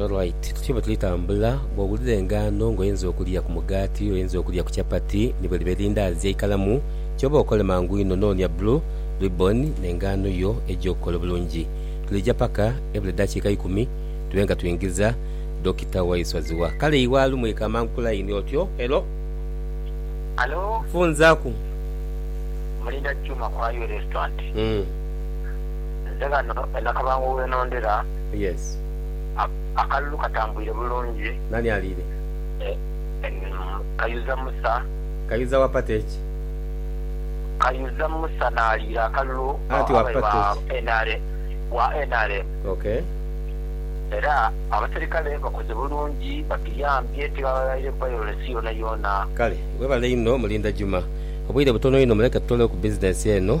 Alright, tuti bwe tuli tambula, bw'owulira engaano ng'oyinza okulya ku mugaati, oyinza okulya ku chapati ni bwe liba erindaazi eikalamu, ky'oba okole mangu inho noonia blue ribbon n'engaano yo eija okukola obulungi. Tulija paka ebula eddakiika ikumi tube nga twingiza Dokita Waiswa Zziwa. Kale Iwaalu mwika amangu ku layini. Otyo? Hello? Halo? Nfunzaaku. Mulinda Juma ku Highway Restaurant. Nze ghano e Nakabango we nondera. Yes. Akalulu katambwire bulungi. Nani aliire? Kayuza Musa. Kayuza wapata eki? Kayuza Musa n'aliira akalulu ababe ba nrm. Era abaserikale bakoze bulungi, batuyambye tibaghaire violence yoonayoona. Kale, webale inho Mulinda Juma. Obwire butono inho muleke tutoolewo ku bizinensi eno.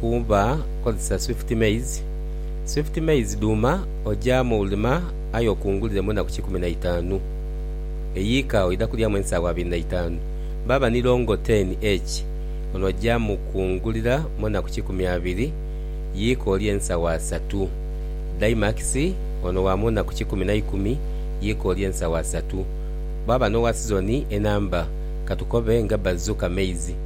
kuba kozesa swift maize, swift maize dhuma oja mu lima aye okungulire mu enaku kikumi na itanu eyiika oidha kulyamu ensaawa abiri na itanu baba ni longo 10H ono oja mu kungulira mu enaku kikumi abiri yiika olye ensaawa satu, Daimax ono wa mu naku kikumi na ikumi yiika olye ensaawa satu bwaba no wa sizoni enamba katukobe nga bazuka maize.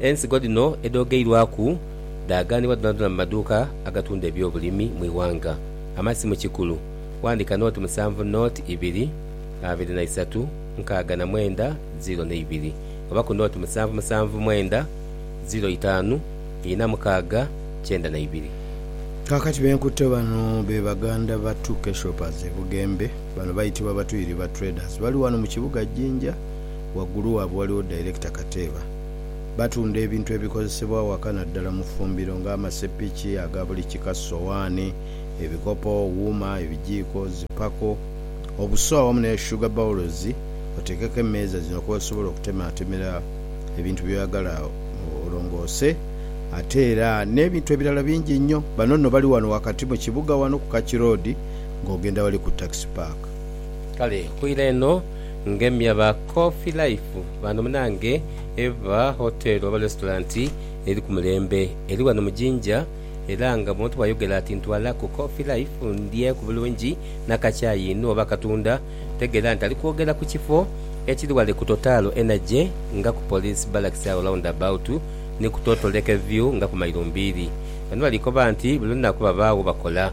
Ensigo dhino edhoogeirwaku dhaaghanibwa dhonadhona mu maduuka agatunda ebyobulimi mu ighanga. Amasimu kikulu. Wandika nooti musanvu nooti ibiri abiri na isatu nkaaga na mwenda ziro ne ibiri oba ku nooti musanvu musanvu mwenda ziro itaanu ina mukaaga kyenda na ibiri. Kaakati be nkutte bano be baganda ba Tuke Shoppers e Bugembe. Bano baitibwa Batuyiri ba Traders. Bali wano mu kibuga Jinja. waggulu waabwe waliwo Director Kateeba. Batunda ebintu ebikozesebwa awaka naddala mu ffumbiro nga amasepiki aga buli kika, sowaani, ebikopo, wuuma, ebijiiko, zi pako, obuso awamu ne sugar bowls oteekeko emmeeza zino kwosobola okutemaatemera ebintu byoyagala olongoose ate era n'ebintu ebirala bingi nnyo. Bano nno bali wano wakati mu kibuga wano ku Kaki Road ng'ogenda wali ku Taxi Park. Kale okwira eno. ngemya ba Coffee Life bano munange eba hotel oba restaurant eri ku mulembe eri wano mu Jinja era nga bwontu bwayogera ati ntwala ku Coffee Life ndye ku bulungi na ka kyayi inho oba akatunda tegera nti alikwogera ku kifo ekiri wale ku Totalo Energy nga ku Police Barracks agho round about ni ku Toto Lake View nga ku mailo mbiiri. Bano balikoba nti buli lunaku babagho bakola.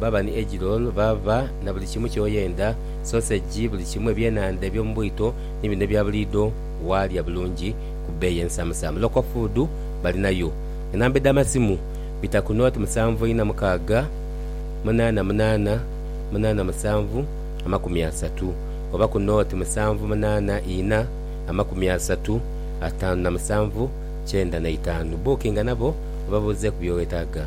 Baaba ni eggroll baaba na buli kimu kyoyenda, sausage, buli kimu, ebyenhandha ebyomu bwito ni bino ebya buliidho, waalya bulungi ku bbeeyi ensamusamu. Local Food balinayo. Enamba edh'amasimu, bita ku nought musanvu ina mukaaga munaana munaana munaana musanvu amakumi asatu oba ku nought musanvu munaana ina amakumi asatu ataanu na musanvu kyenda na itaanu. Bookinga nabo oba buuzeeku by'owetaaga.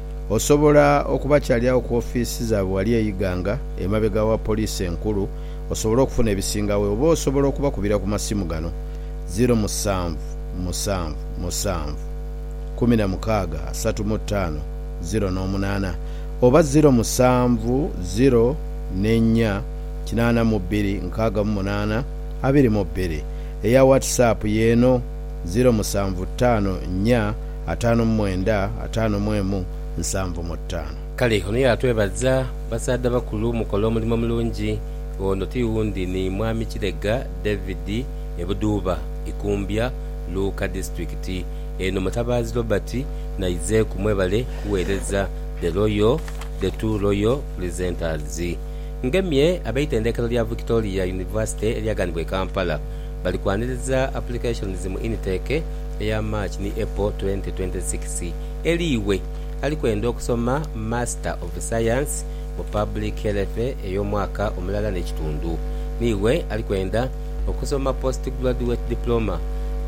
Osobola okubakyalyawo ku ofiisi zaabwe ghali e Iganga emabega wa Poliisi Enkulu osobole okufuna ebisingagho oba osobola okubakubira ku masimu gano, ziro musanvu musanvu musanvu kumi na mukaaga asatu mu ttaano ziro n'omunaana oba ziro musanvu ziro ne nnya kinaana mu bbiri nkaaga mu munaana abiri mu bbiri. Eya WhatsApp y'eno, ziro musanvu ttaano nnya ataanu mu mwenda, ataanu mu emu, nsanvu mu ttaanu. Kale ono yaatwebaza, Basaadha bakulu mukola omulimo mulungi. Ono ti wundi ni Mwami Kilega David e Budhuuba, Ikumbya, Luuka Disiturikiti. Eno Mutabaazi Robert n'aizeeku mwebale kuweereza The Royal, The Two Royal Presenters. Ngemye ab'eitendekero lya Victoria University eryaganibwa e Kampala. Bali kwaniriza applications mu Intake eya March ni April twenty twenty six. Eli iwe ali kwenda okusoma Master of Science mu Public Health ey'omwaka omulala n'ekitundu, ni iwe ali kwenda okusoma Postgraduate Diploma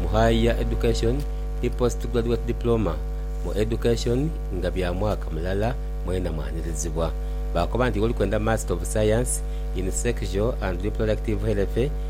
mu Higher Education ni Postgraduate Diploma mu Education nga bya mwaka mulala, mwena mwanirizibwa. Baakoba nti iwe oli kwenda Master of Science in Sexual and Reproductive Health,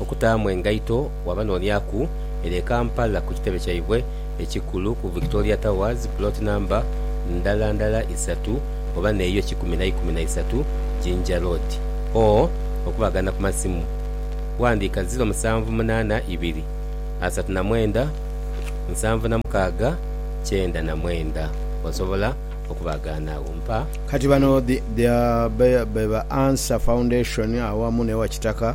okutaamu engaito wabanonyaku ere e Kampala ku kitebe kyaibwe ekikulu ku Victoria Towers plot number ndala ndala isatu oba neyo kikumi naikumi naisatu Jinja Road or okubagana ku masimu wandiika ziro musanvu munaana ibiri asatu na mwenda nsanvu na mukaaga kyenda na mwenda osobola okubagaana agho mpa. Kati bano the Beba Answer Foundation awamu ne Wakitaka.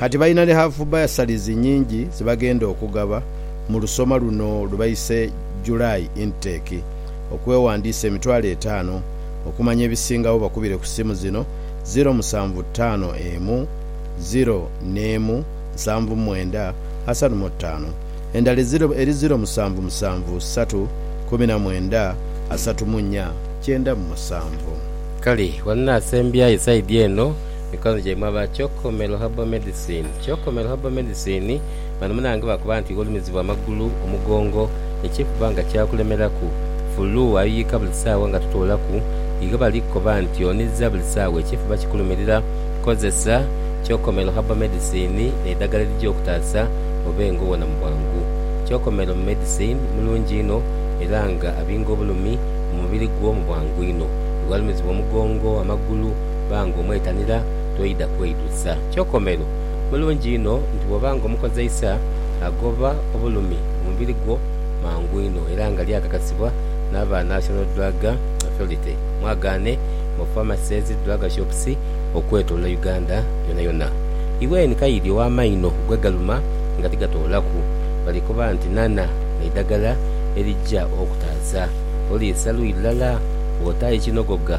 Kati balina ni haafu bursaries nyingi ze bagenda okugaba mu lusoma luno lwe baise July Intake. Okwewandiisa emitwalo etaano. Okumanya ebisingagho bakubire ku simu zino, ziro musanvu ttaano emu, ziro n'emu, nsanvu mwenda, asatu mu ttaano. Endala eziro eri ziro musanvu musanvu ssatu, kumi na mwenda, asatu mu nnya, kyenda mu musanvu. Kale wano nasembyayo side eno. Mikonho gyaimwe aba Kyokomelo Herbal Medicine Kyokomelo Herbal Medicine bano munange bakoba nti iwe olumizibwa amagulu, omugongo ekikuba nga kyakulemeraku, fulu ayuyika buli saawa nga totoolaku iwe bali kukoba nti oniza buli saawa ekifuba kikulumirira kozesa Kyokomelo Herbal Medicine neidhagala erija okutaasa obe nga owona mu bwangu. Kyokomelo Medicine mulungi inho era nga abinga obulumi mu mubiri gwo mu bwangu inho. Iwe alumizibwa omugongo, amagulu. banga omwetanira toidha kweidhuza. Kyokomero, mulungi inho nti bw'oba nga omukozeisa, agoba obulumi mu mubiri gwo mangu inho era nga lyakakasibwa n'aba National Drug Authority, mwagaane mu pharmacies, drug shops okwetolola Uganda yonayona. Iwe ni kayidi ow'amaino gwe galuma nga tigatoolaku, bali kuba nti nana eidagala erija okutaaza, oliisa luyi lulala bw'otaaye kinogoga.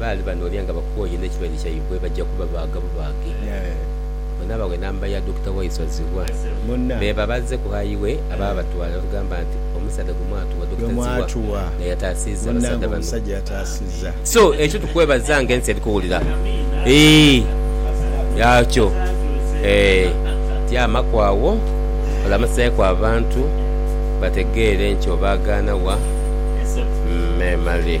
Baali banoonia nga bakooye n'ekirwaire kyaibwe baja kubabaaga bubaage. Bw'enaabaagho enamba ya Dokita Waiswa Zziwa beeba bazze ku hayi we aba abatwala n'atugamba nti, Omusaadha gwe mwatuwa, Dokita Zziwa, nga yataasiza abasaadha bano. So ekyo tukwebaza nga ensi eri kuwulira eeh yaakyo eeh tyamaku agho olamusaaku abantu bategeere nti obaagaana wa? Memale.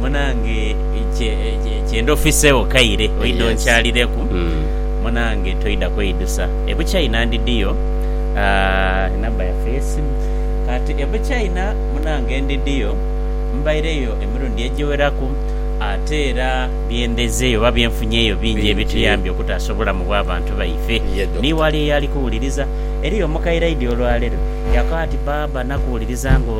Munange kyenda ofiseegho kaire oidha onkyalireku munange toidha kweidusa e Buchaina ndidiyo enamba yaffe ey'esimu kati e Buchaina munange ndidiyo mbaireyo emirundi egiweraku ate era byendhezeeyo oba byenfunyeeyo bingi ebituyambye okutaasa obulamu bw'abantu baife ni wali eyo ali kuwuliriza. Eriyo omukaire aidye olwalero yakoba ati, Baaba nakuwuliriza nga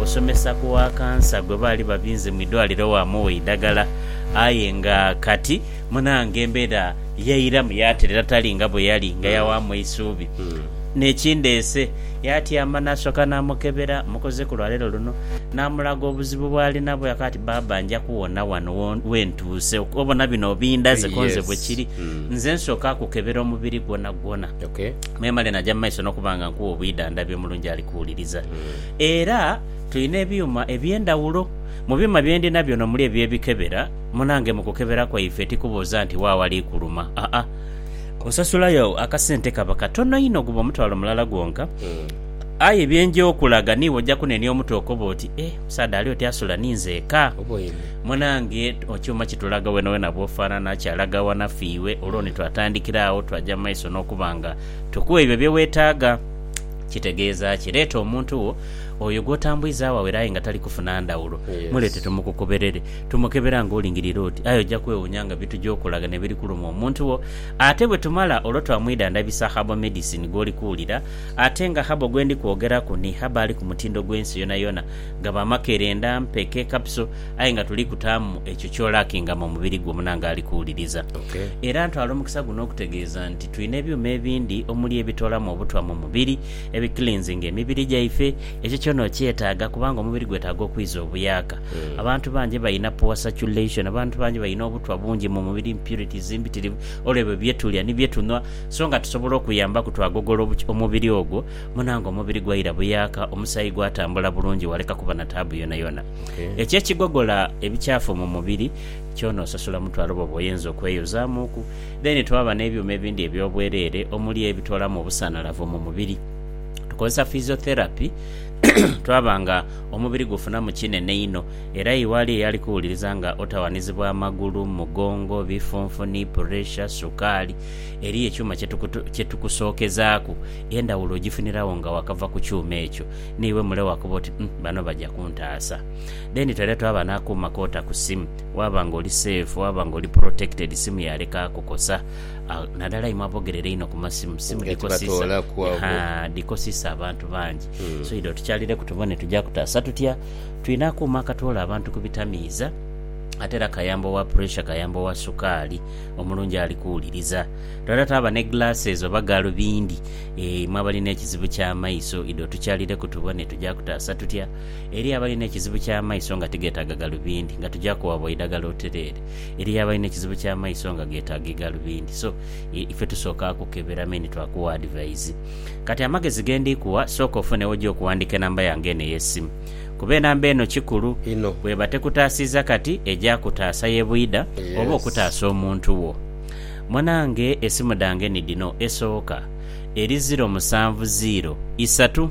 osomesa. wa kansa gwe baali babinze mu idwaliro waamuwa eidagala aye nga kati munaange embeera yairamu yaaterera tali nga bwe yali nga yawaamu eisuubi. N'ekindeese, yaatyama n'asooka naamukebera mukoze ku lwa leero luno naamulaga obuzibu bw'ali nabwo yaakoba ati, Baaba nja kuwona wano we ntuuse. Obona bino obindaze ko nze bwe kiri, nze nsooka kukebera omubiri gwonagwona memale naja mu maiso n'okuba nga nkuwa obwidhandhabi omulungi ali kuwuliriza era. Tulina ebyuma eby'endhawulo. Mu byuma bye ndina byona omuli ebyo ebikebera, munange mu kukebera kwaife tikubuuza nti wa awali kuluma, aa, osasula yo akasente kaba katono inho guba omutwalo mulala gwonka, aye bye nja okulaga niiwe oja kunenia omutwe okobe oti, eh, omusaadha ali oti asula ni nzeeka? Munange ekyuma kitulaga wenawena bwofanana, kyalaga awanafu iwe, olwo ni twatandikira agho twaja mu maiso n'okuba nga tukuwa ebyo bye wetaaga. Kitegeeza ki? Leeta omuntu wo. Oyo gw'otambwizagho awere aye nga tali kufuna ndhawulo, muleete tumukukuberere. Tumukebera ng'olingirire oti, aye oja kwewuunya nga bye tuja okulaga ne biri kuluma omuntu wo. Ate bwe tumala olwo twamwidhandhabisa herbal medicine gw'oli kuwulira. Ate nga herbal gwe ndi kwogeraku ni herbal ali ku mutindo gw'ensi yonayona. Gaba makerenda, mpeke, capsule aye nga tuli kutaamu ekyo ky'olackinga mu mubiri gwo munange ali kuwuliriza. Era ntwala omukisa guno okutegeeza nti twina ebyuma ebindi omuli ebitoolamu obutwa mu mubiri Ebi cleansinga emibiri gyaife, ekyo kyona okyetaaga kubanga omubiri gwetaaga okwiza obuyaaka. Abantu bangi balina poor circulation, abantu bangi balina obutwa bungi mu mubiri, impurities mbitirivu olw'ebyo bye tulya ni bye tunhwa. So nga tusobola okuyambaku twagogola omubiri ogwo, muna nga omubiri gwaira buyaaka, omusaayi gwatambula bulungi waleka kuba na taabu yonayona. Ekyo ekigogola ebikyafu mu mubiri kyona osasula mutwalo bwoba oyenze okweyozaamuku. Then twaba n'ebyuma ebindi eby'obwereere omuli ebitoolamu obusanhalavu mu mubiri. Tukozesa physiotherapy twaba nga omubiri gufunamu kinene inho era iwe ali eyali kuwuliriza nga otawanizibwa amagulu, mugongo, bifunfuni, puresha, sukaali, eriyo ekyuma kye tukusokezaaku endhawulo ogifuniragho nga wakava ku kyuma ekyo n'iwe mule wakoba oti, Umm bano baja kuntaasa. Then twere twaba n'akuuma k'ota ku simu. Waaba nga oli safe, waaba nga oli protected, simu yaaleka kukosa. Nadala imwe abogerera einho ku masimu, simu dhikosisa, haa, dhikosisa abantu bangi. So idho tukyalireku tubone tuja kutaasa tutya. Twina akuuma akatwoola abantu ku bitamiiza, ate era kayamba owa pressure, kayamba owa sukaali omulungi ali kuwuliriza. Twidha twaba ne glasses oba galubindi, eeh, imwe abalina ekizibu ky'amaiso, idho tukyalireku tubone tuja kutaasa tutya. Eriyo abalina ekizibu ky'amaiso nga tigeetaaga galubindi, nga tuja kuwabwa eidagala otereere. Eriyo abalina ekizibu ky'amaiso nga geetaaga eigalubindi. So, i, ife tusooka kukebera me ni twakuwa adivaizi. Kati, amagezi ge ndi kuwa, sooka ofune w'oja okuwandiika enamba yange eno ey'esimu. Kuba enamba eno kikulu. Inho. Bw'eba tekutaasiiza kati, eja kutaasa ye bwidha, oba Yes. okutaasa omuntu wo. Munange, esimu dhange ni dhino, esooka eri ziro musanvu ziiro isatu.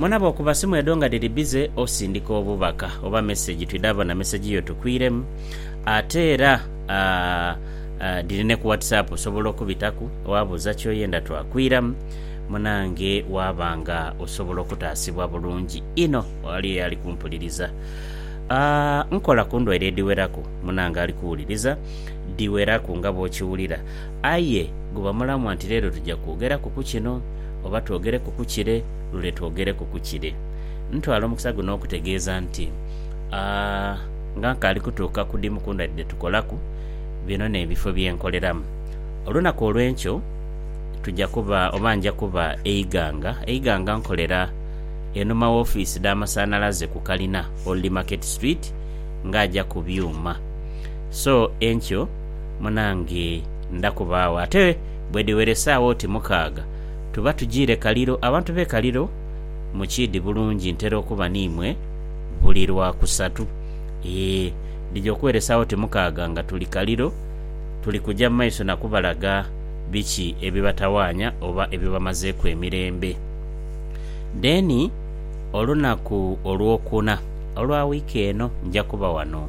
Mwena bwokuba simu edho nga dhiri bize osindika obubaka oba mesegi twidha bona mesegi yo tukwiremu ate era dhiri ne ku whatsapp osobola okubitaku wabuuza kyoyenda twakwiramu munange waaba nga osobola okutaasibwa bulungi inho ghali eyali kumpuliriza. Nkola ku ndwaire edhiweraku munange ali kuwuliriza dhiweraku nga bwokiwulira. Aye gubamulamwa nti leero tuja kwogeraku ku kino, oba twogereku ku kire, lule twogereku ku kire. Ntwala omukisa guno okutegeeza nti, a nga nkaali kutuuka ku dhimu ku ndhadhi dhe tukolaku, bino n'ebifo bye nkoleramu. Olunaku olw'enkyo tuja kuba oba nja kuba e Iganga. E Iganga nkolera enhuma w'ofiisi dh'amasanhalaze ku kalina, Old Market Street, ng'aja ku byuma. So enkyo. Munange ndha kubaagho. Ate bwedhiweresaagho oti mukaaga, tuba tujiire Kaliro. Abantu b'e Kaliro mukiidhi bulungi ntera okuba n'imwe buli Lwakusatu. Yee, dhija okuweresaagho oti mukaaga nga tuli Kaliro. Tuli kuja mu maiso na kubalaga biki ebibatawaanya oba ebibamazeeku emirembe. Then olunaku Olwokuna olwa wiiki eno nja kuba wano.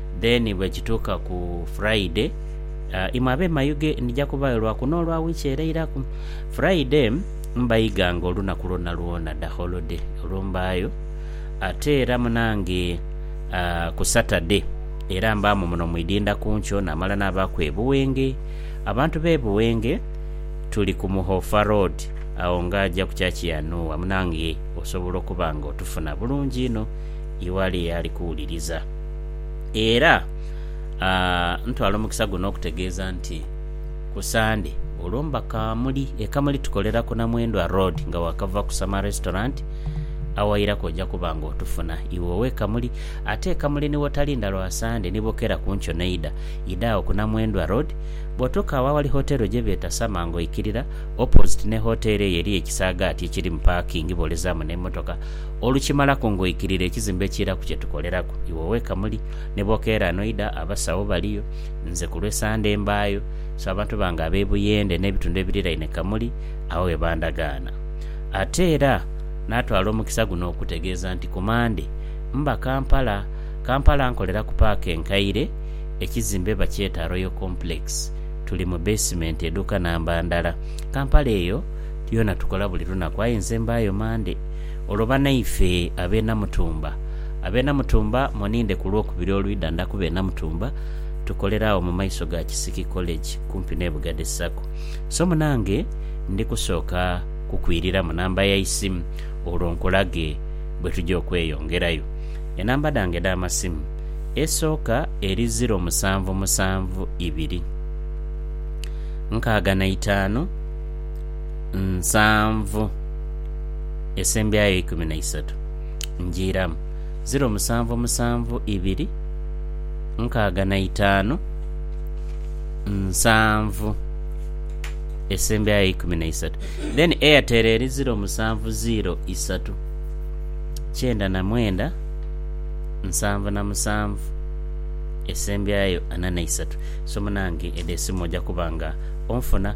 Then bwekituuka ku Friday, imwe abe Mayuge ndija kubayo lwa kuno olwa wiiki ereiraku. Friday mbaiga nga olunaku lwona lwona da holiday olwo mbaayo. Ate era munange ku Saturday era mbaamu muno mu idinda ku nkyo namala nabaaku e Buwenge. Abantu be Buwenge tuli ku Muhofa Road agho nga aja ku church ya Nuuwa. Munange osobola okuba nga otufuna bulungi inho iwe ali eyali kuwuliriza. Era ntwala omukisa guno okutegeeza nti ku Sande olwo mba Kamuli. E Kamuli tukolera ku Namwendwa Road nga waakava ku Summer Restaurant awairaku oja kuba nga otufuna iwe ow'e Kamuli. Ate e Kamuli ni wotalinda lwa Sande ni bokera ku nkyo n'eidha, idha agho ku Namwendwa Road. Bw'otuuka agho aghali hoteero gye beeta Summer ng'oikirira, opposite ni hoteero eyo eriyo ekisaagaati ekiri mu paakingi bw'olezaamu n'emmotoka. Olukimalaku ng'oikirira ekizimbe ekiiraku kye tukoleraku, iwe weka muli. Ni bw'okeera n'oidha, abasawo baliyo. Nze ku lw'e Sande mbaayo. So abantu bange ab'e Buyende n'ebitundu ebiriraine Kamuli agho ghe bandagaana. Ate era naatwala omukisa guno okutegeeza nti ku Mande mba Kampala. Kampala nkolera ku paaka enkaire, ekizimbe bakyeta Royal Complex. Tuli mu beesimenti eduuka namba ndala. Kampala eyo yoona tukola buli lunaku aye nze mbaayo Mande. Olwo banaife ab'e Namutumba, ab'e Namutumba muninde ku Lwokubiri olwidha nda kuba e Namutumba tukolere agho mu maiso ga Kisiki College kumpi n'e Bugade Sacco. So munange ndi kusooka kukwiriramu namba ya isimu olwo nkulage bwe tugya okweyongerayo. Enamba dhange edh'amasimu, esooka eri ziro musanvu musanvu ibiri, nkaaga na itaanu. nsanvu esembyayo eikumi na isatu ngiiramu ziro musanvu musanvu ibiri nkaaga na itaanu nsanvu esembyayo eikumi na isatu then Airtel eri ziro musanvu ziro isatu kyenda na mwenda nsanvu na musanvu esembyayo ana na isatu so munange edho esimu oja kuba nga onfuna.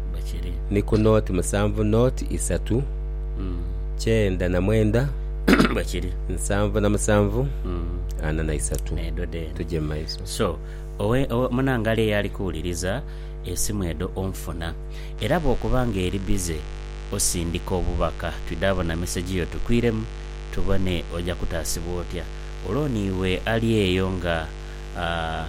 ni ku nooti musanvu nooti isatu kyenda na mwenda nsanvu na musanvu ana na isatu. Tuje mu maiso. Munangali eyo ali kuwuliriza, esimu edho onfuna. Era bw'okuba ng'eri bize, osindika obubaka twidhe abo na mesegi yo tukwiremu tubone oja kutaasibwa otya. Olwo ni iwe ali eyo nga a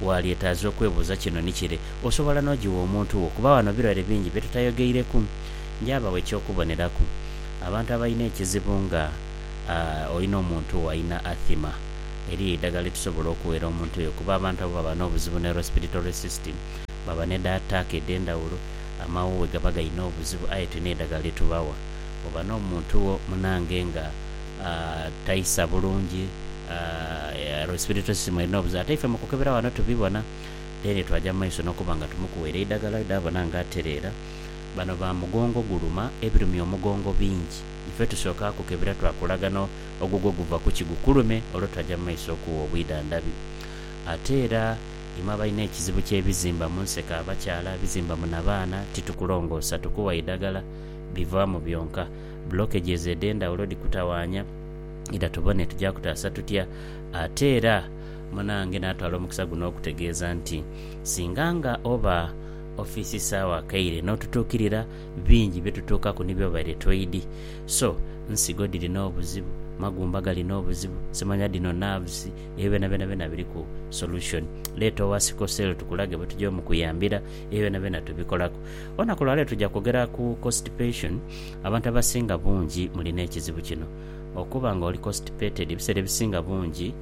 waalyetaaza okwebuuza kino ni kire, Osobola n'ogigha omuntu wo? Kuba wano birwaire bingi bye tutayogeireku. Nja bagho eky'okuboneraku. Abantu abalina ekizibu nga a olina omuntu wo alina athima, eriyo eidagala lye tusobola okughera omuntu oyo kuba abantu abo baba n'obuzibu ne respiratory system, baba ne da taaka edh'endhawulo, amawooghe gaba gaina obuzibu aye tulina eidagala lye tubawa. Bw'oba n'omuntu wo munange nga. taisa bulungi respiratory system erina obuzibu ate ife mukukebera wano tubibona then twaja mumaiso nokuba nga tumukuwera eidagala wedabona nga atereera bano ba mugongo guluma ebirumya omugongo bingi ife tusoka kukebera twakulaga no ogugwo guva kuki gukulume olwo twaja mumaiso okuwa obwidhandhabi ate era imwe abalina ekizibu kyebizimba munseko abakyala ebizimba mu nabaana titukulongoosa tukuwa idagala bivamu byonka. Blockages edhendhawulo dhikutawaanya era tubone tuja kutaasa tutya ate era munaange natwala omukisa guno okutegeeza nti singa nga oba office saawa kaire notutuukirira bingi byetutuukaku ni byobaire toidhi so nsigo dhirina obuzibu, magumba galina obuzibu, simanya dhino nerves ebyo byona byona byona biriku solution leeta owa sickle cell tukulage bwetuja omukuyambira ebyo byona byona tubikolaku. Olunaku lwaleero tuja kwogera ku constipation. Abantu abasinga bungi muli n'ekizibu kino. Okuba nga oli constipated ebiseera ebisinga bungi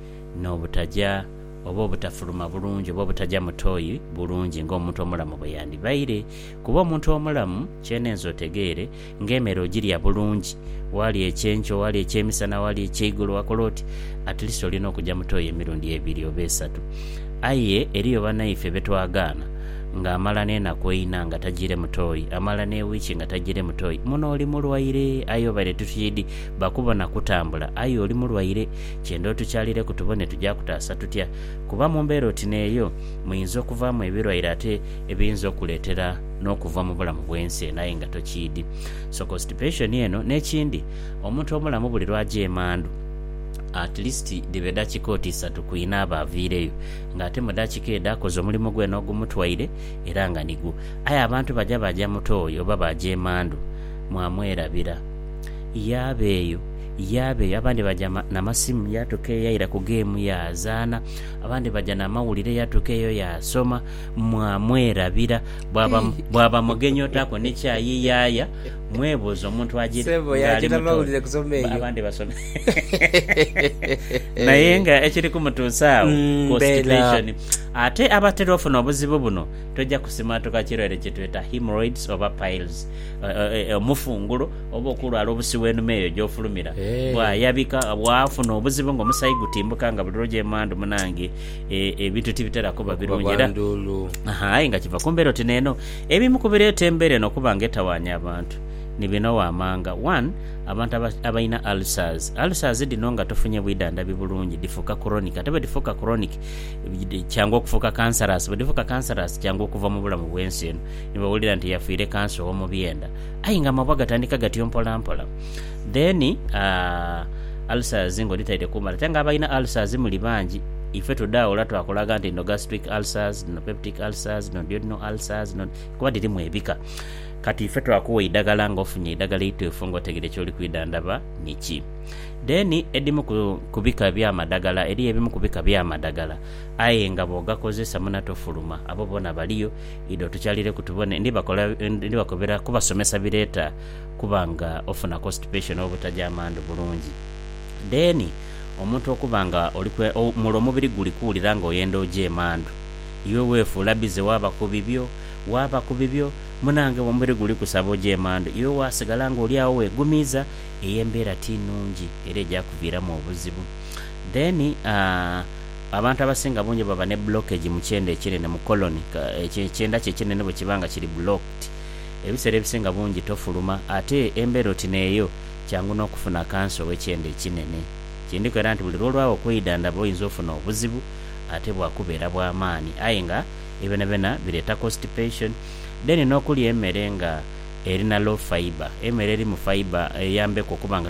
n'obutaja oba obutafuluma bulungi oba obutaja mu toi bulungi ng'omuntu omulamu bwe yandibaire. Kuba omuntu omulamu kyenenze otegeere ng'emere ogirya bulungi, walya ekyenkyo, walya ekyemisana, walya ekyeigulo, wakola oti, at least olina okuja mu toi emirundi ebiri oba esatu. Aye eriyo banaife be twagaana. nga amala n'enaku eina nga tajiire mu toyi, amala n'ewiiki nga tajiire mu toyi, muno oli mulwaire. Aye obaire tituyidi bakubona kutambula, aye oli mulwaire. Kyenda otukyalireku tubone tuja kutaasa tutya, kuba mu mbeera oti n'eyo muinza okuvaamu ebirwaire ate ebiyinza okukuleetera n'okuva mu bulamu bw'ensi eno aye nga tokyidi. So constipation eno. N'ekindi, omuntu omulamu buli lw'aja emandhu, at least dhibe dakika oti isatu kw'inaaba aviireyo. nga ate mu daakika edho akoze omulimo gwene ogumutwaire era nga nigwo, aye abantu baja baaja mu toyi oba baaja emandhu, mwamwerabira. Yaaba eyo, yaaba eyo, abandi baja na masimu yaatuka eyo yaira ku geemu yaazaana, abandi baja n'amawulire yaatuka eyo yaasoma, mwamwerabira. Bwaba, bwaba mugenyi otaako ni kyayi yaaya, mwebuuza omuntu agy'eri Ssebo, yaja n'amawulire kusoma eyo. Abandi basoma. Naye nga ekiri kumutuusa agho, Mm, constipation. Ate abatera ofuna obuzibu buno toja kusimaatuka kirwaire kye tweta hemorrhoids oba piles, eh, eh, eh, omufunguro oba okulwala obusi w'enuma eyo gy'ofulumira. Eh. Bwayabika waafuna obuzibu ng'omusaayi gutimbuka nga buli lw'oja emandhu munange eh, ebintu tibitera kuba Okuba birungi era bwanduulu. Aha, aye nga kiva ku mbeera oti neeno. Ebimu ku bireeta embeera eno okuba nga etawaanya abantu ni bino waamanga, 1. Abantu abalina ulcers, Ulcers dhino nga tofunye bwidhandhabi bulungi dhifuuka kuroniki ate bwedhifuuka kuroniki kyangu okufuuka kansarasi. Bwedhifuuka kansarasi kyangu okuva mu bulamu bwensi eno ni bwewulira nti yafiire kansa ow'omu byenda aye nga amabwa gatandika gatyo mpolampola. Then ulcers nga odhitaire kuumale ate nga abalina ulcers muli bangi ife tudha ola twakulaga nti dhino gastric ulcers, dhino peptic ulcers, dhino duodenal ulcers kuba dhirimu ebika. Kati ife twakuwa eidagala nga ofunye eidagala eituufu nga otegede kyoli kwidhandhaba ni ki? Then edimu ku ku bika ebya madagala eriyo ebimu ku bika bya madagala aye nga bwogakozesa muna tofuluma abo bona baliyo idho tukyalireku tubone ndi bakola ndi bakobera kubasomesa bireta kuba nga ofuna constipation oba obutajja amandhu bulungi then omuntu okuba nga oli kwe mule omubiri guli kuwulira nga oyenda oja emandhu iwe wefuula busy waba ku bibyo waaba ku bibyo, munaange omubiri guli kusaba oje emandhu. Iwe waasigala ng'oli agho weegumiiza, eyo embeera ti nnungi era eja kuviiramu obuzibu. Then, abantu abasinga bungi baba ne blockage mu kyenda ekinene, mu colon. Ekyo ekyenda kyo ekinene bwe kiba nga kiri blocked, ebiseera ebisinga bungi tofuluma. Ate embeera oti n'eyo, kyangu n'okufuna kansa ow'ekyenda ekinene. Kindiko era nti buli lw'olwagho okwidhandhaba oyinza ofuna obuzibu ate bwakubeera bwa maani aye nga Ebyo byonabyona bireeta constipation. Then n'okulya emere nga erina low fibre, emere erimu fibre eyambeku okuba nga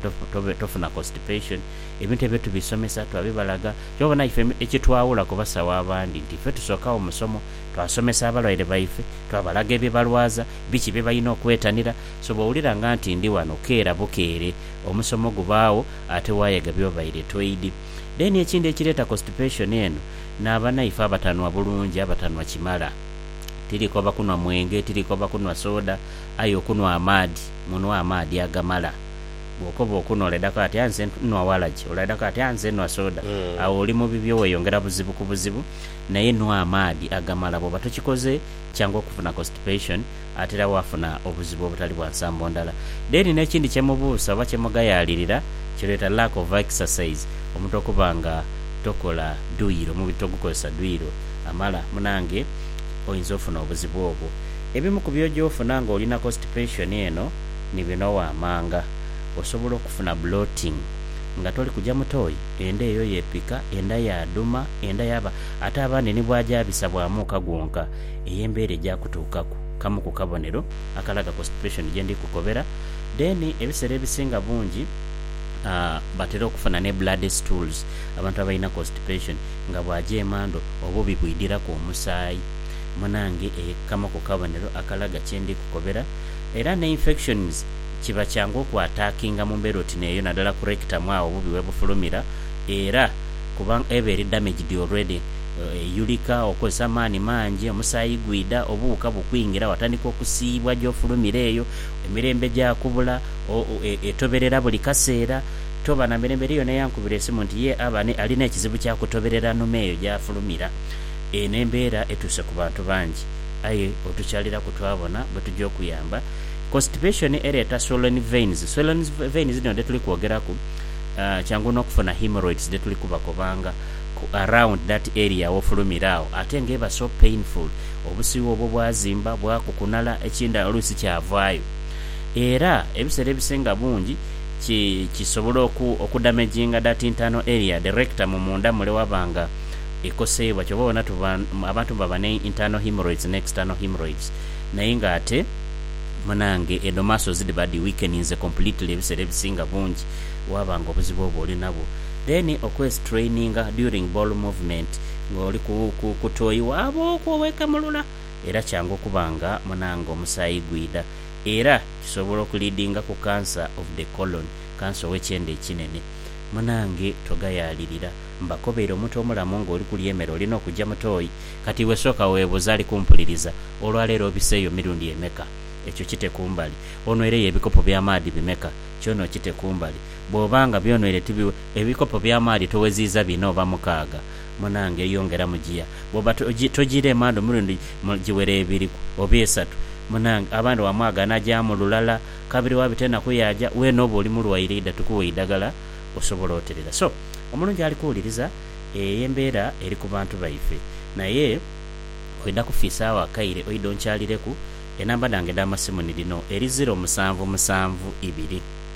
tofuna constipation. Ebintu ebyo tubisomesa, twabibalaga. Kyova obona ife ekitwawula ku basawo abandi nti ife tusookagho musomo, twasomesa abalwaire baife, twabalaga ebibalwaza, biki byebalina okwetanira. So bwowulira nga nti ndi wano keera bukeere, omusomo gubaagho ate wayega byobaire toid. Then ekindi ekireeta constipation eno naaba naife abatanwa bulungi abatanwa kimala. Tiri koba kunwa mwenge tiri koba kunwa soda aye okunwa amaadhi munwe amaadhi agamala. Bwokoba okunwa olaidako ati aye nze nwa waragi olaidako ati aye nze nwa soda agho oli mu bibyo weyongera buzibu ku buzibu naye nwa amaadhi agamala bwoba tokikoze kyangu okufuna constipation atera waafuna obuzibu obutali bwa nsambo ndala. Then n'ekindi kye mubuusa oba kye mugayaalirira kireeta lack of exercise, omuntu okuba nga tokola duyiro, omubiri togukozesa duyiro amala, munange oyinza ofuna obuzibu obwo. Ebimu ku by'oja ofuna ng'oli na constipation eno ni bino waamanga, Osobola okufuna bloating nga toli kuja mu toyi, enda eyo yeepika, enda yaadhuma, enda yaaba ate abandi ni bw'aja abisa bw'amuuka gwonka. ey'embeera egya kutuukaku, kamu ku kabonero akalaga ku situation gye ndi kukobera, then ebisera ebisinga bungi a batera okufuna ne bloody stools, abantu abalina constipation nga bwaja emandho obubi bwidhiraku omusaayi munange e kamu ku kabonero akalaga kye ndi kukobera era ne infections kiba kyangu oku attackinga mu mbeera oti neeyo nadala ku rectum agho obubi webufulumira era kuba eba eri damaged already. eyulika okozesa amaani mangi, omusaayi gwidha, obuwuka bukwingira, watandika okusiiyibwa gy'ofulumira eyo, emirembe gyakubula, etoberera buli kaseera. Toba na mirembe. Eriyo n'eyankubira esimu nti ye aba ni, ali n'ekizibu kya kutoberera nhume eyo gy'afulumira. Eno embeera etuuse ku bantu bangi. Aye otukyaliraku twabona bwe tuja okuyamba. Constipation ereeta swollen veins. Swollen veins dhino dhe tuli kwogeraku, kyangu n'okufuna hemorrhoids dhe tuli kubakobanga. ku around that area wofulumira agho ate nga eba so painful obusiwa obwo bwazimba bwakukunala ekindala oluusi kyavaayo era ebisera ebisinga bungi ki kisobola oku okudamaginga that internal area the rectum munda mule waba nga ekoseibwa kyova obona tuba abantu baba ne internal hemorrhoids ne external hemorrhoids naye nga ate munange edho muscles dhiba dhi weakeninze completely ebisera ebisinga bungi waba nga obuzibu obwo olinabwo. Then okwestraininga during bowel movement nga oli ku tooyi waaba okwo owekamulula era kyangu okuba nga munange omusaayi gwidha era kisobola okuleadinga ku cancer of the colon, kansa ow'ekyenda ekinene. Munange togayaalirira. Mbakobeire omuntu omulamu nga oli kulya emere olina okugya mu tooyi. Kati iwe sooka weebuuze ali kumpuliriza, olwaleero obiseeyo mirundi emeka? Ekyo kite kumbali. Onweireyo ebikopo by'amaadhi bimeka? Kyona okite kumbali. Bw'oba nga by'onwire ti biwe, ebikopo by'amaadhi toweziiza bina oba mukaaga, munange yongeramu gia. Bw'oba togiira emandhu omulundi gumu, giwere ebiri oba esatu, munange. Abandhi wamwaga anagyamu lulala, kabiri waabita enaku yaaja. Weene oba oli mulwaire idha tukuwe eidhagala osobole oterera. So, omulungi ali kuwuliriza. Eyo y'embeera eri ku bantu baife. Naye oidha kufiisaagho akaire oidhe onkyalireku. Enamba dhange edh'amasimu ni dhino, eri ziro musanvu musanvu ibiri.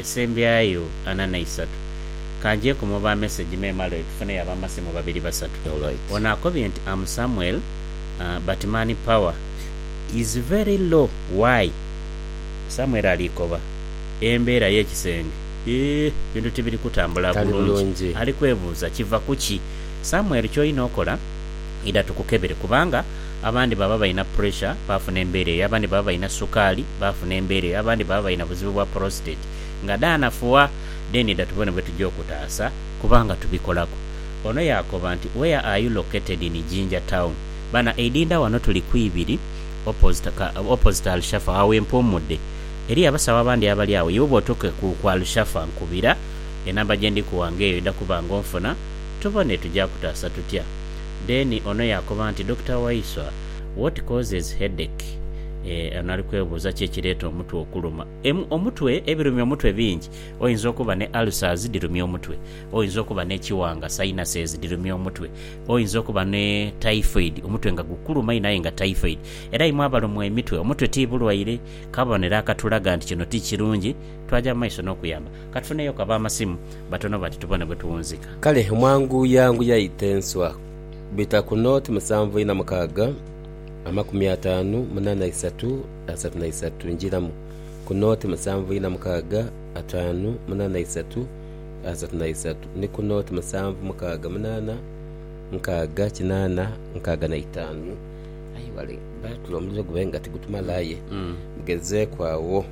esembyayo ana na isatu. Ka ngyeku mu ba mesegi me male tufuneyo ab'amasimu babiri basatu. Ono akobye nti am Samuel but man power is very low why? Samuel ali koba embeera y'ekisenge eeh bintu tibiri kutambula bulungi ali kwebuuza kiva kuki? Samuel ky'olina okola idha tukukebere kubanga. Abandi baba balina puresha, baafuna embeera eyo. Abandi baba balina sukaali, baafuna embeera eyo. Abandi baba balina buzibu bwa porositeti nga dhaanafuwa. Then dha tubone bwe tuja okutaasa kubanga tubikolaku. Ono yaakoba nti, Where are you located in Jinja town? Bana Idinda wano tuli ku ibiri opposite ka, opposite Alshafa agho we mpuumudde. Eriyo abasawo abandi abali agho. Iwe bw'otuuka ku, ku Alshafa nkubira. Enamba gye ndikuwa ng'eyo idha kuba ng'onfuna. Tubone tuja kutaasa tutya. Then ono yaakoba nti, Dokita Waiswa, what causes headache? Eeh, ono ali kwebuuza ki ekireeta omutwe okuluma. Em, omutwe, ebirumya omutwe bingi. Oyinza okuba ne ulcers dhirumya omutwe. Oyinza okuba n'ekiwanga, sinuses, dhirumya omutwe. Oyinza okuba ni typhoid, omutwe nga gukuluma inho aye nga typhoid. Era imwe abalumwa emitwe, omutwe ti bulwaire. Kabonero akatulaga nti kino ti kirungi. Twaja mu maiso n'okuyamba. Ka tufuneyo ku ab'amasimu batono bati tubone bwe tuwunzika. Kale mwanguyanguya ite enswa. Bita ku nooti musanvu ina mukaaga, amakumi ataanu munaana isatu, asatu na isatu. Njiramu ku nooti musanvu ina mukaaga, ataanu munaana isatu, asatu na isatu, ni ku nooti musanvu mukaaga munaana, nkaaga kinaana, nkaaga na itaanu. Aye wale, baatula omuliro gube nga tigutumala aye mugezeeku agho.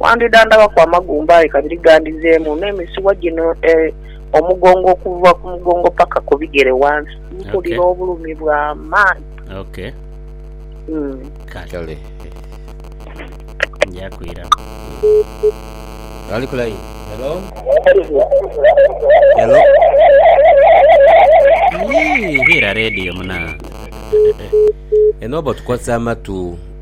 Wandidhandhabaku amagumba aye kabiri gandhizeemu, n'emisuwa gino e omugongo okuva ku mugongo paka ku bigere wansi. Mpulira Okay. obulumi bwa maanhi. Ok. Mm. Kale. Kale. Nja kwira. Ali ku line. Hello? Hello? Yii, Hira radio muna. Eno oba otukozesa amatu.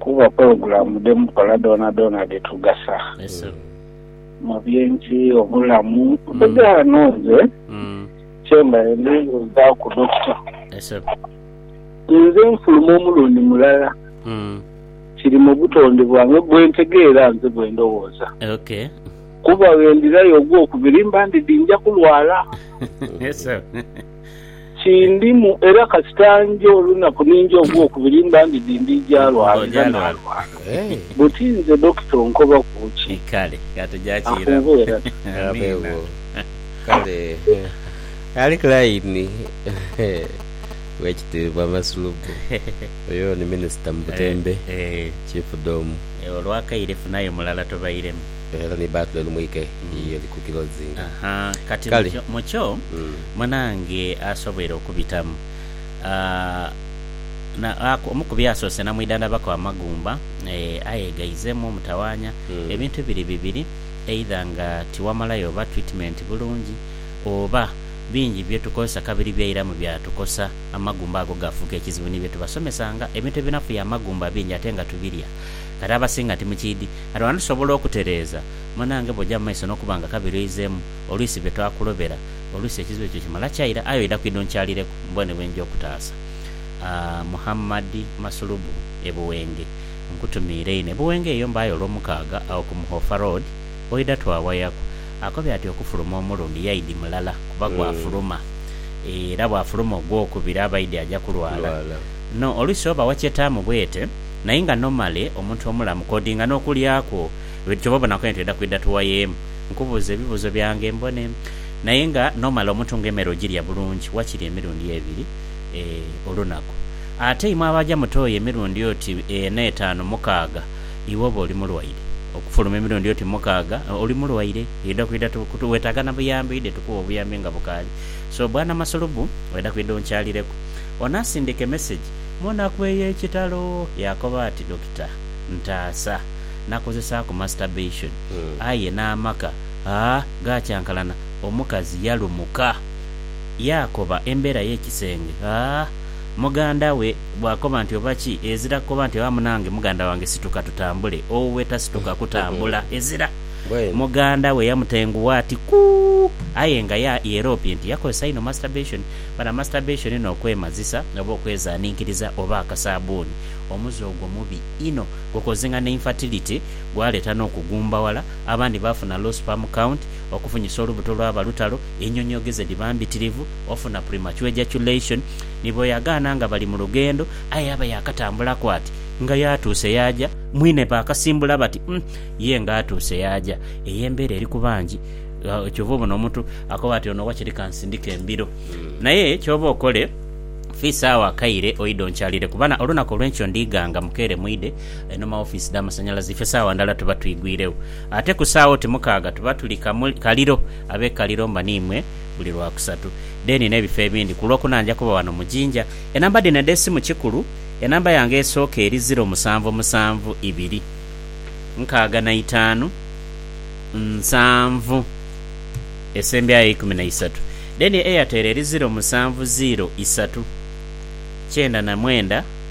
Kuba pologulamu dhe mukola dhoonadhoona dhitugasa mu by'ensi, obulamu. Bwedha ghano nze kyembaire ndhowoozaku Dokita, ninze nfuluma omulundi mulala kiri mu butonde bwange bwe ntegeera nze bwe ndhowooza kuba bwe ndhirayo ogwokubiri mba ndidhi nja kulwala. Kindimu, era kasita nja olunaku ni nja ogwokubiri mba ndi di ndi ja lwalira na lwalira. Buti nze Dokita onkoba ku ki? Afuubo era ta. Era ni battle eri mwike yiyo eri ku kilozinga. Aha kati Kale. mukyo mukyo Mm. munange asoboire okubitamu aah, na aku omu ku byasoose namwidhandhabaku amagumba eeh, aye gaizeemu omutawaanya Mm. ebintu biri bibiri either nga tiwamalayo oba treatment bulungi oba bingi bye tukozesa kabiri byairamu byatukosa amagumba ago gaafuuka ekizibu ni bye tubasomesanga ebintu ebinafuya amagumba bingi ate nga tubirya kati abasinga timukiidi Aroha ndisobola okutereeza. Munange bw'oja mu maiso n'okuba nga kabiri oizeemu, olwisi be twakulobera, olwisi ekizibu ekyo kimala kyaira. Aye oidha kwidha onkyalireku mbone bwe nja okutaasa. Muhammad Masulubu, e Buwenge. Nkutumiire inho. E Buwenge eyo mbaayo Olwomukaaga, agho ku Muhofa Road, oidha twawayaku. Akobye ati okufuluma omulundi yaidi mulala kuba gwafuluma, era bw'afuluma ogwokubiri abaidi aja kulwala. No, olwisi oba wakyetaamu bwete. naye nga nomale omuntu omulamu kodinga nokulya kwo ebintu kyoba obona kwentu eda kwida tuwayemu nkubuuze ebibuuzo byange mbone naye nga nomale omuntu nga emere ogirya bulungi wakiri emirundi ebiri eeh olunaku ate imwe abaja mutoya emirundi oti ena etanu mukaaga iwe oba oli mulwaire okufuluma emirundi oti mukaaga oli mulwaire eda kwida tu wetaga nabuyambi oide tukuwe obuyambi nga bukaali so bwana masulubu eda kwida onkyalireku onasindike message Mu naku ey'ekitalo, yaakoba ati, Dokita, ntaasa. Nakozesaaku masturbation, aye n'amaka aa gaakyankalana. Omukazi yalumuka. Yaakoba embeera y'ekisenge aa muganda we bw'akoba nti oba ki, ezira kukoba nti oba munange muganda wange situka tutambule, owuwe tasituka kutambula. Ezira. Muganda we yamutengugha ati, Kuu! Aye nga yeeroopye nti yakozesa inho masturbation. Bana masturbation n'okwemazisa oba okwezaninkiriza oba akasaabuuni, omuze ogwo mubi inho. Gukozing'ana infertility, gwaleeta n'okugumbawala, abandi baafuna low sperm count, okufunyisa olubuto lwaba lutalo, enyonyogeza edhiba mbitirivu, ofuna premature ejaculation. Ni bweyagaana nga bali mu lugendo aye yaba yaakatambulaku ati nga yaatuuse yaaja. Mwine baakasimbula bati, Umm, ye nga atuuse yaaja. Eyo embeera eri ku bangi. Kyova obona omuntu akoba ati ono wakiri kansindike embiro naye kyoba okole fiisa agho akaire oidhe onkyalire kubana olunaku olwenkyo ndighanga mukeere mwidhe eno mawofiisi dhamasanyalaze ife saawa ndhala tuba twigwiregho ate ku saawa oti mukaaga tuba tuli kaliro abe kaliro mba niimwe buli lwakusatu deni nebifo ebindi kulwokuna nja kuba wano mu Jinja enamba dhino edhesimu kikulu enamba yange esooka eri ziro musanvu musanvu ibiri nkaaga naitaanu. nsanvu esembyayo eikumi na isatu then eyateera eri ziro musanvu ziro isatu kyenda na mwenda.